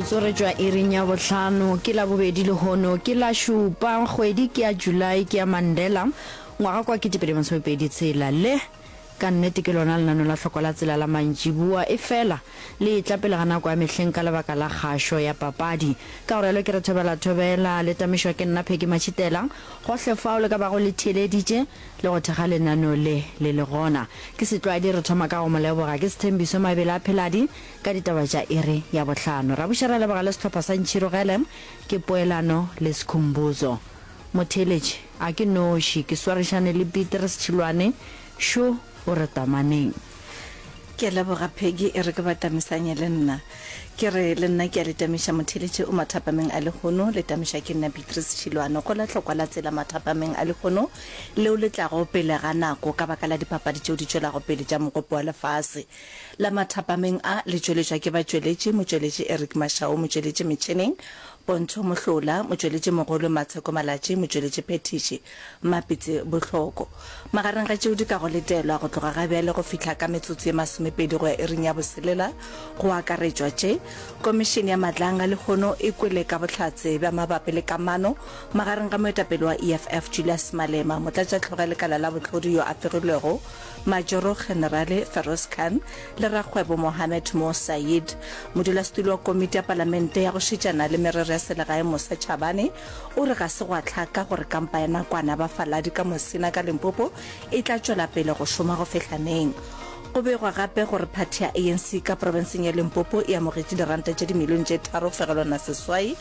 Tsoretšwa iring ya bohlano, ke Labobedi lehono ke la šupa, kgwedi ke ya July, ke ya Mandela, ngwaga kwa kete pedi masome pedi tshela. Le, ka nnete, ke lona lenano la hloko la tsela la mantšiboa, efela le etla pele ga nako ya mehleng ka lebaka la kgašo ya papadi. Ka go realo ke re thobela, thobela, le tamešwa ke nna Peggy Mashitela, gohle fao le ka bago le theeleditše, le go thekga lenano le, le le gona. Ke Setlwadi, re thoma ka go mo leboga. Ke Sethembiso Mabele a Pheladi, Ka ditaba tša iri ya bohlano rabuša ra leboga le sehlopha sa Ntšhirogele ke poelano le Sikhumbuzo Motheeletši a ke noši ke swarišane le Beatrice Tšhilwane šo o re tamaneng. Ke a leboga Peggy e re ke ba tamisanye le nna. Ke re le nna ke a le tamiša Motheeletši o mathapameng a lehono le tamišwa ke nna Beatrice Tšhilwane go la hlokwa la tsela mathapameng a lehono leo le tlago pele ga nako ka baka la dipapadi tšeo di tšwelago pele tša Mokopo wa Lefase. La mathapameng a le tšweletšwa ke batšweletši, motšweletši Eric Mashau, motšweletši metšhineng Pontsho Mohlola, motšweletši mogolo Matsheko Malatji, motšweletši phethiši Mmapitse Bohloko. Magareng ga tšeo di ka go letelwa go tloga ga bjale go fihla ka metsotso ye masomepedi go ya iring ya boselela go akaretšwa tše Komišene ya Matlanga lehono e kwele ka bohlatse bja mabapi le kamano magareng ga moetapele wa EFF Julius Malema, motlatšahlgo ge lekala la bohlodi yo a fegilwego Majoro-Generale Feroz Khan le rakgwebo Mohamed Mo Saeed. Modulasetulo wa Komiti ya Palamente ya go Šetšana le Merero ya Selegae Musa Chabane o re ga se gwa hlaka gore kampa ya nakwana ya bafaladi ka Musina ka Limpopo e tla tšwela pele go šoma go fihla neng. Go begwa gape gore phathi ya ANC ka profenseng ya Limpopo e amogetše diranta tše dimilione tše tharo fegelwana seswai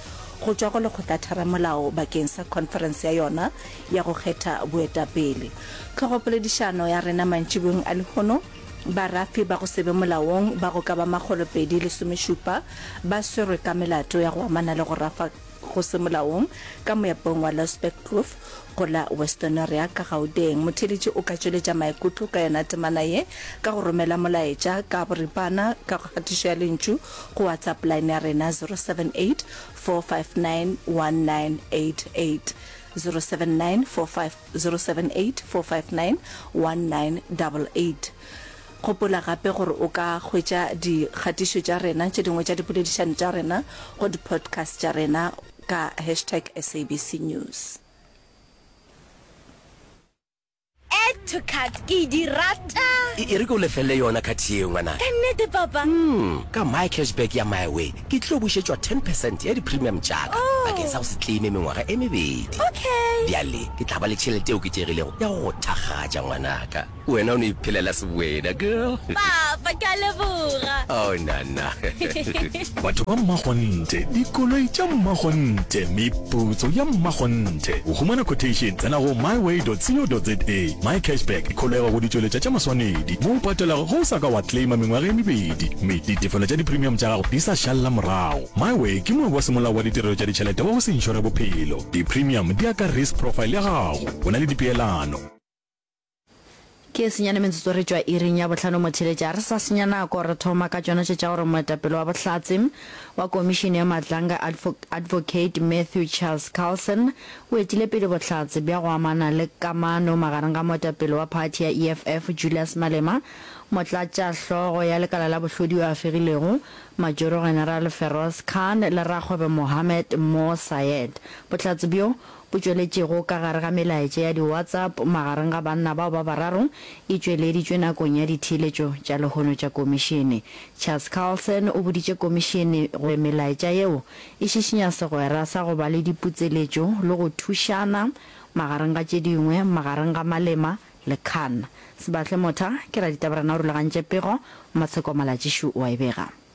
go tšwa go Lekgotla-Tharamolao bakeng sa khonferense ya yona ya go kgetha boetapele. Tlhogopoledišano ya rena mantšiboeng a lehono, Barafi ba go se be molaong ba go ka ba makgolopedi lesomešupa ba swerwe ka melato ya go amana le go rafa go se molaong ka moepong wa Losbergkloof go la Westonaria ka Gauteng. Motheeletši o ka tšweletša maikutlo ka yona temana ye ka go romela molaetša ka boripana ka kgatišo ya lentšu go WhatsApp line ya rena 078 459 1988. 079450784591988. Gopola gape gore o ka hwetša dikgatišo tša rena tše dingwe tša dipoledišano tša rena go di-podcast tša rena ka hashtag SABC News. Add to cart, ke di rata. E, e re ke o lefelle yona cart yeo, ngwanaka. Ka nnete, Papa? Umm, ka My Cash Back ya My Way, ke tlilo bušetšwa ten percent ya di-premium tša ka, Oh. bakeng sa go se claime mengwaga e mebedi. Okay. Bjale, ke tla ba le tšhelete e oketšegilego ya go go thakgatša, ngwanaka. Wena o no iphelela seboena, girl. Papa, ke a leboga. Oh, nana. Batho ba mmakgonthe, dikoloi tša mmakgonthe, meputso ya mmakgonthe. Go humana quotation, tsena go myway.co.za. Mycashback e kgolegwa go ditšweletša tša maswanedi mo o patelago ge o sa ka wa claima mengwaga e mebedi mme ditefelo tša di-premium tša gago di sa šalela morago. Myway ke moabi wa semolao wa ditirelo tša ditšhelete wa go se inšore bophelo. Di-premium di ya ka risk profile ya gago. O na le dipeelano. Ke senyane metsotso re tšwa iring ya bohlano motheletša, ga re sa senya nako, re thoma ka tšona tše tša gore moetapele wa Bohlatse wa Komišene ya Matlanga Advocate Matthew Charles Carlson o etile pele bohlatse bja go amana le kamano magareng ga moetapele wa phathi ya EFF Julius Malema, motlatšahlogo ya lekala la bohlodi yo a fegilego, Majoro-General Feroz Khan le rakgwebo Mohammed Mo Sayed. Bohlatse bjo o tšweletšego ka gare ga melaetša ya di-WhatsApp magareng ga banna bao ba bararo e tšweleditšwe nakong ya ditheeletšo tša lehono tša Komišene. Charles Carlson o boditše Komišene gore melaetša yeo e šišinya segwera sa go ba le diputseletšo le go thušana, magareng ga tše dingwe, magareng ga Malema le Khan. Sebahle Motha ke raditabarena o rulagantše pego, Matsheko Malatšišu o a e bega.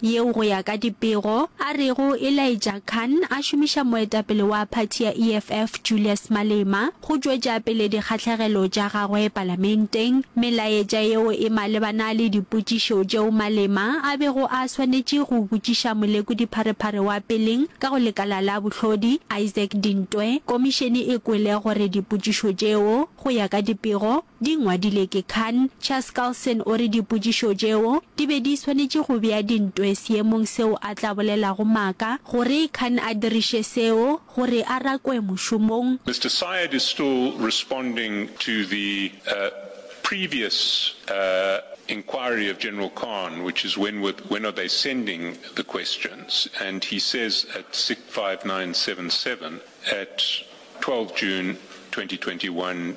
yeo go ya ka dipego a rego e laetša Khan a šomiša moetapele wa phathi ya EFF Julius Malema go tšwetša pele dikgahlegelo tša gagwe palamenteng. Melaetša yeo e malebana le dipotšišo tšeo Malema a bego a swanetše go botšiša molekodipharephare wa peleng ka go lekala la bohlodi, Isaac Dintwe. Komišene e kwele gore dipotšišo tšeo go ya ka dipego, Di ngwadile ke Khan. Chaskalson o re dipotšišo tšeo di be di swanetše go bea dintwe seemong seo a tla bolelago maaka gore Khan a diriše seo gore a rakwe mošomong. Mister Syed is still responding to the previous inquiry of General Khan which is when were when are they sending the questions and he says at sic 5977 at 12 June 2021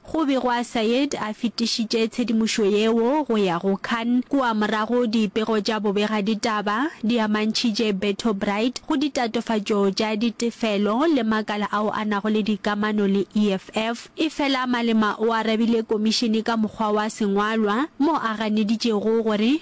Go be gwa Said a fetišitše tshedimošo yeo go ya go Khan kua morago dipego tša bobegaditaba di amantšhitše Berto Bright go ditatofatšo tša ditefelo le makala ao a nago le dikamano le EFF. Efela Malema o arabile komišene ka mokgwa wa sengwalwa mo a ganeditšego gore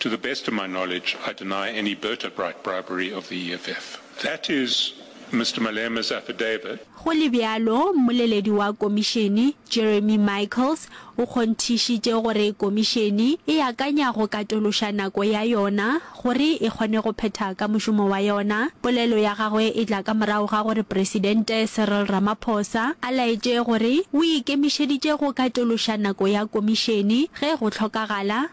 To the best of my knowledge, I deny any Berta-Bright bribery of the EFF. That is Mister Malema's affidavit. Go le bjalo, mmoleledi wa Komišene, Jeremy Michaels, o kgonthišitše gore Komišene e akanya go katološa nako ya yona gore e kgone go phetha ka mošomo wa yona. Polelo ya gagwe e tla ka morago ga gore Presidente Cyril Ramaphosa a laetše gore o ikemišeditše go katološa nako ya Komišene ge go hlokagala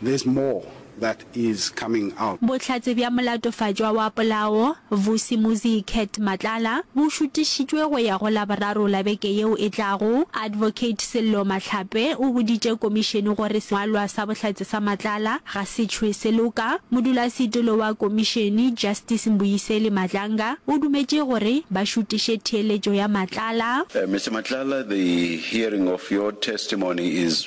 There's more that is coming out. Bohlatse bja molatofatšwa wa polao, Vusi Muzi Cat Matlala, bo šutišitšwe go ya go Laboraro la beke yeo e tlago. Advocate Sello Mahlape o boditše komišene gore sengwalwa sa bohlatse sa Matlala ga se tšhwe se loka. Modulasetilo wa komišene, Justice Mbuyiseli Madlanga, o dumetše gore ba šutiše theeletšo ya Matlala. Mister Matlala, the hearing of your testimony is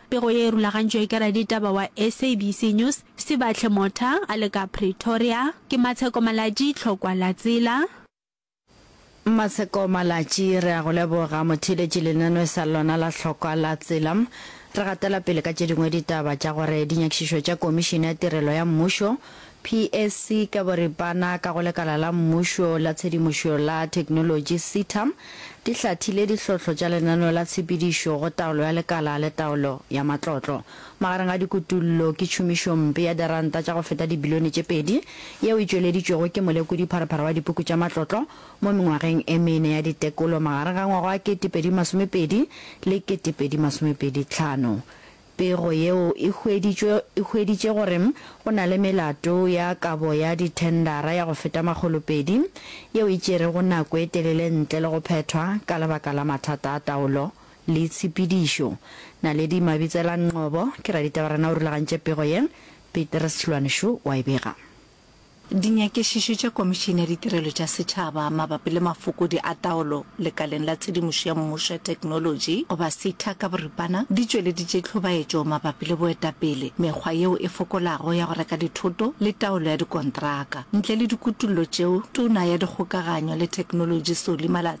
Pego ye e rulagantšwe ke raditaba wa SABC News, Sibahle Motha a le ka Pretoria. Ke Matsheko Malatji, Tlhokwa la Tsela. Matsheko Malatji, re a go leboga. Motheeletši lenanwe sa lona la Tlhokwa la Tsela. Re gatela pele ka tše dingwe ditaba tša gore dinyakišišo tša Komišene ya Tirelo ya Mmušo PSC ka boripana ka go Lekala la Mmušo la Tshedimošo la Theknolotši, CTAM, di hlathile dihlotlo tša lenaneo la tshepedišo go taolo ya lekala le taolo ya matlotlo. Magareng ga dikutullo ke tšhomišompe ya diranta tša go feta dibilione tše pedi yeo e tšweleditšwego ke molekodi-pharephare wa dipuku tša matlotlo mo mengwageng e mene ya ditekolo magareng ga ngwaga wa 2020 le 2025. Pego yeo e hweditšwe e hweditše gore go na le melato ya kabo ya dithendara ya go feta makgolopedi yeo e tšerego nako e telele ntle le go phethwa ka lebaka la mathata a taolo le tshepedišo. Naledi Mabitsela Nqobo ke raditaba rena o rulagantše pego ye, Petrus Hlwaneshu wa e bega. Dinyakišišo tša Komišene ya Ditirelo tša Setšhaba mabapi le mafokodi a taolo lekaleng la tshedimošo ya mmušo ya theknolotši, goba SETA ka boripana, di tšweleditše tlhobaetšo mabapi le boetapele, mekgwa yeo e fokolago ya go reka dithoto le taolo ya dikontraka. Ntle le dikutollo tšeo, Tona ya Dikgokaganyo le Theknolotši Solly Malatsi,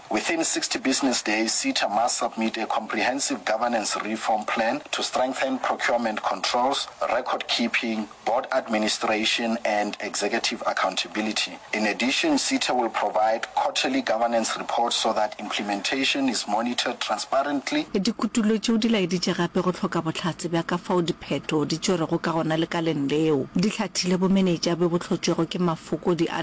Within sixty business days, SETA must submit a comprehensive governance reform plan to strengthen procurement controls, record keeping, board administration and executive accountability. In addition, SETA will provide quarterly governance reports so that implementation is monitored transparently. Dikutulo tšeo di laeditše gape go hloka bohlatse bja ka fao diphetho di tšwerwego ka gona lekaleng leo. Di hlathile bomenetša bjo bo hlotšwego ke mafokodi a.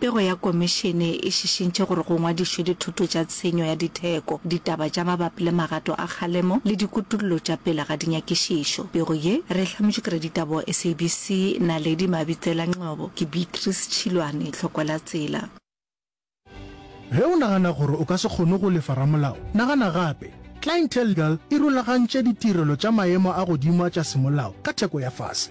Pego ya Komišene e šišintšhe gore go ngwadišwe dithoto tša tshenyo ya ditheko, ditaba tša mabapi le magato a kgalemo le dikutollo tša pele ga dinyakišišo. Pego ye re e hlametšwe ke raditaba wa SABC, Naledi Mabitsela Ngcobo. Ke Beatrice Tšhilwane, hloko la tsela. Ge o nagana gore o ka se kgone go lefa ramolao, nagana gape. Clientelegal e rulagantše ditirelo tša maemo a godimo a tša semolao ka theko ya fase.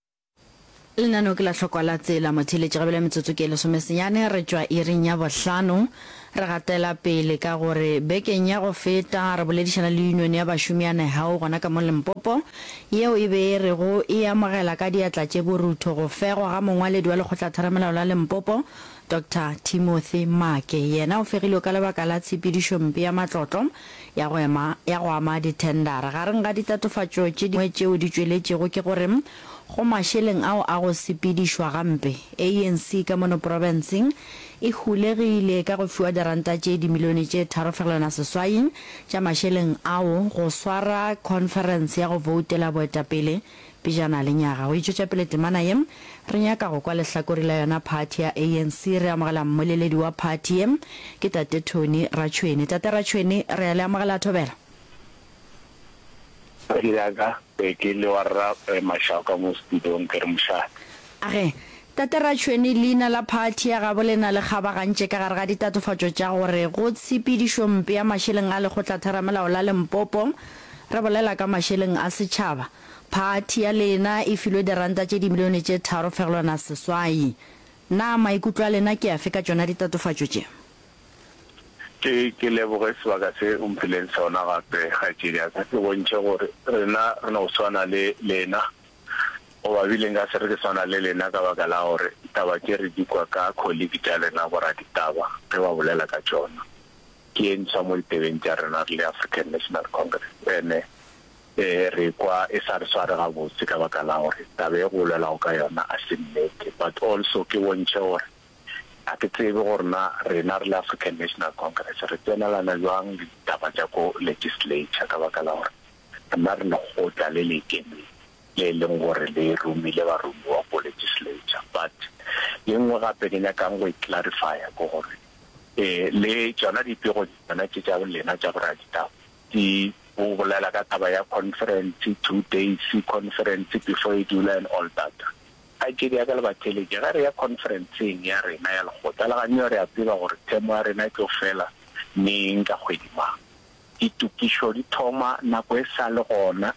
Lenaneo ke la hlokwa la tsela motheeletši gabele metsotso ke lesome senyane re tšwa iring ya bohlano. Re gatela pele ka gore bekeng ya go feta re boledišana le union ya bašomi ya Nehau gona ka mo Limpopo yeo e be e rego e amogela ka diatla tše borutho go fegwa ga mongwaledi wa lekgotlatheramelao la Limpopo Doctor Timothy Maake yena o fegilwe ka lebaka la tshepedišompe ya matlotlo ya go ema ya go ama dithendara. Gareng ga ditatofatšo tše dingwe tšeo di tšweletšego ke gore go mašeleng ao a go sepedišwa gampe, ANC ka mono profenseng e hulegile ka go fiwa diranta tše dimilione tše tharo fegelwana seswai tša mašeleng ao go swara khonferense ya go voutela boetapele Pejana lenyaga go itšwetša pele temana ye, re nyaka go kwa lehlakori la yona phathi ya ANC. Re amogela mmoleledi wa phathi ye, ke Tate Tony Ratšhwene. Tate Ratšhwene, re a le amogela thobela. Padi ya ka, ee, ke le wa Rra Mashau ka mo studio-ng, ke re mošate. Age, Tate Ratšhwene, leina la phathi ya gabo le na le kgabagantše ka gare ga ditatofatšo tša gore go tshepedišo mpe ya mašeleng a Lekgotla Theramelao la Limpopo, re bolela ka mašeleng a setšhaba. Phathi ya lena e filwe diranta tše dimilione tše tharo fegelwana seswai. Na maikutlo a lena ke afe ka tšona ditatofatšo tše? Ke ke leboge sebaka se o mphileng sona gape, kgaetšedi ya ka. Ke bontšhe gore rena re no swana le lena, goba bile nka se re ke swana le lena ka baka la gore taba tše re di kwa ka kholiki tša lena boraditaba ge ba bolela ka tšona. Ke ye ntshwa mo ditebeng tša rena re le African National Congress. Ene. Ee, re ekwa e sa re sware gabotse ka baka la gore taba e go bolelwago ka yona ga se nnete. But also ke bontšhe gore ga ke tsebe gore na rena re le African National Congress re tsenelana bjang le ditaba tša ko legislature ka baka la gore rena re lekgotla le le ikemeng le e leng gore le romile baromiwa ko legislature. But ye nngwe gape ke nyakang go e clarifya ke gore le tšona dipego tšona tše tša lena tša boraditaba Di o bolela ka taba ya conference two days conference before e dula and all that. Kgaetšedi ya ka le ba theletše ge re ya conference-eng ya rena ya lekgotla la ganyo re a tseba gore themo ya rena e tlo fela neng ka kgwedi mang. Ditokišo di thoma nako e sa le gona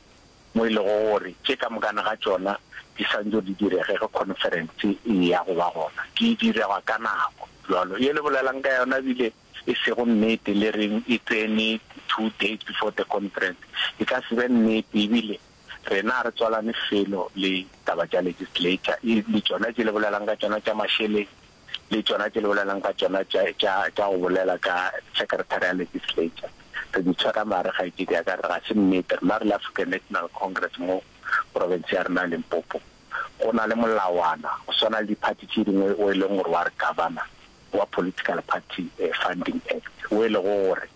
mo e lego gore tše ka mokana ga tšona di santšo di direge ge conference e eya go ba gona. Di direga ka nako bjalo ye le bolelang ka yona bile e sego nnete le reng e tsene two days before the conference e ka se be nnete ebile rena a re tswalane felo le taba tša legislature e le tšona tše le bolelang ka tšona tša mašeleng le tšona tše le bolelang ka tšona tša tša tša go bolela ka secretary ya legislature re di tshwara mare ga itse di ya ka re ga se nnete rena re le African National Congress mo province ya rena Limpopo go na le molawana go swana le di party tše dingwe o e leng gore wa re governor wa Political Party Funding Act, wo e lego gore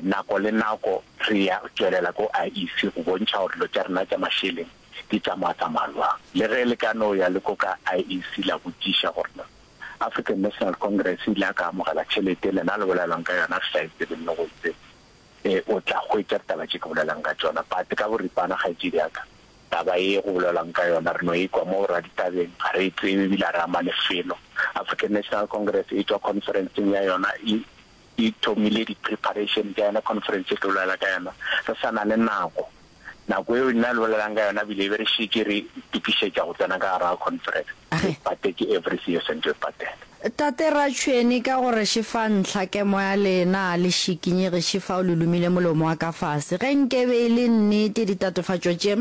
nako le nako re ya tšwelela ko IEC go bontšha gore dilo tša rena tša mašeleng di tsamaya-tsamaya bjang. Le ge le ka no ya le ko ka IEC la botšiša gore na African National Congress e ile ya ka amogela tšhelete e lena le bolelwang ka yona, re sa e tsebe le go e tseba, o tla hwetša ditaba tše ke bolelang ka tšona. But ka boripana, kgaetšedi ya ka, Taba ye go bolelwang ka yona re no e kwa mo raditabeng, ga re e tsebe ebile ga re ama lefelo. African National Congress e tšwa conference-eng ya yona e e thomile di-preparation tša yona, conference e tlo bolela ka yona re sa na le nako. Nako eo nna le bolelang ka yona ebile e be re šetše re itokišetša go tsena ka gare ga conference. A re. Dipate ke every season tše patela. Tate Ratšhweni ka gore šifa ntlha kemo ya lena le šikinyege šifa o le lumile molomo wa ka fase ge nke be e le nnete ditatofatšo tše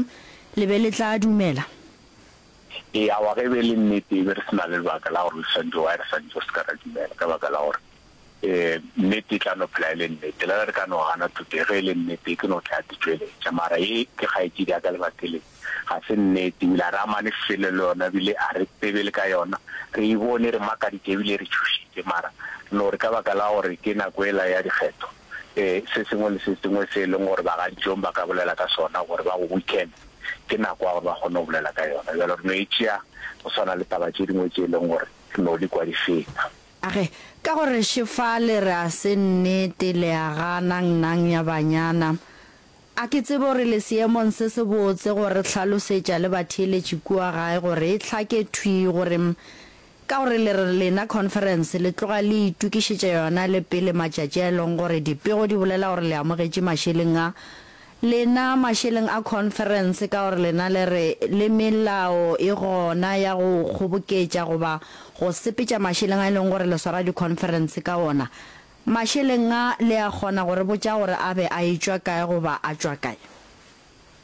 le be le tla dumela. Ee awa ge e be e le nnete e be re se na le lebaka la gore le swantšo why re swantšo se ka ra dumela ka baka la gore. Ee, nnete e tla no phela e le nnete. Le ge re ka no gana thuto ye, ge e le nnete, e tlo no tla ditšweletša. Mara ye ke kgaetšedi ya ka Lebakeling, ga se nnete. Ebile a re amane selo le yona, ebile a re tsebe le ka yona. Re e bone, e re makaditše, ebile e re tšhošitše. Mara re no re ka baka la gore ke nako yela ya dikgetho, ee, se sengwe le se sengwe se e leng gore bagadijong ba ka bolela ka sona gore ba go weekende, ke nako ya gore ba kgone go bolela ka yona. Bjalo re no e tšea go swana le taba tše dingwe tše e leng gore re no di kwa di feta. A re, Ka gore še fa le re a se nnete, le a gana, nnang ya banyana. A ke tsebe gore le seemong se se botse go re hlalosetša le batheeletši kua gae gore e hlake thwi gore m, ka gore le re lena Khonferense le tloga le itokišetša yona le pele matšatši a e lego gore dipego di bolela gore le amogetše mašeleng a Lena mašeleng a khonferense ka gore lena le re le melao e gona ya go kgoboketša goba go sepetša mašeleng a e leng gore le swara dikhonferense ka wona. Mašeleng a le a kgona go re botša gore a be a e tšwa kae goba a tšwa kae?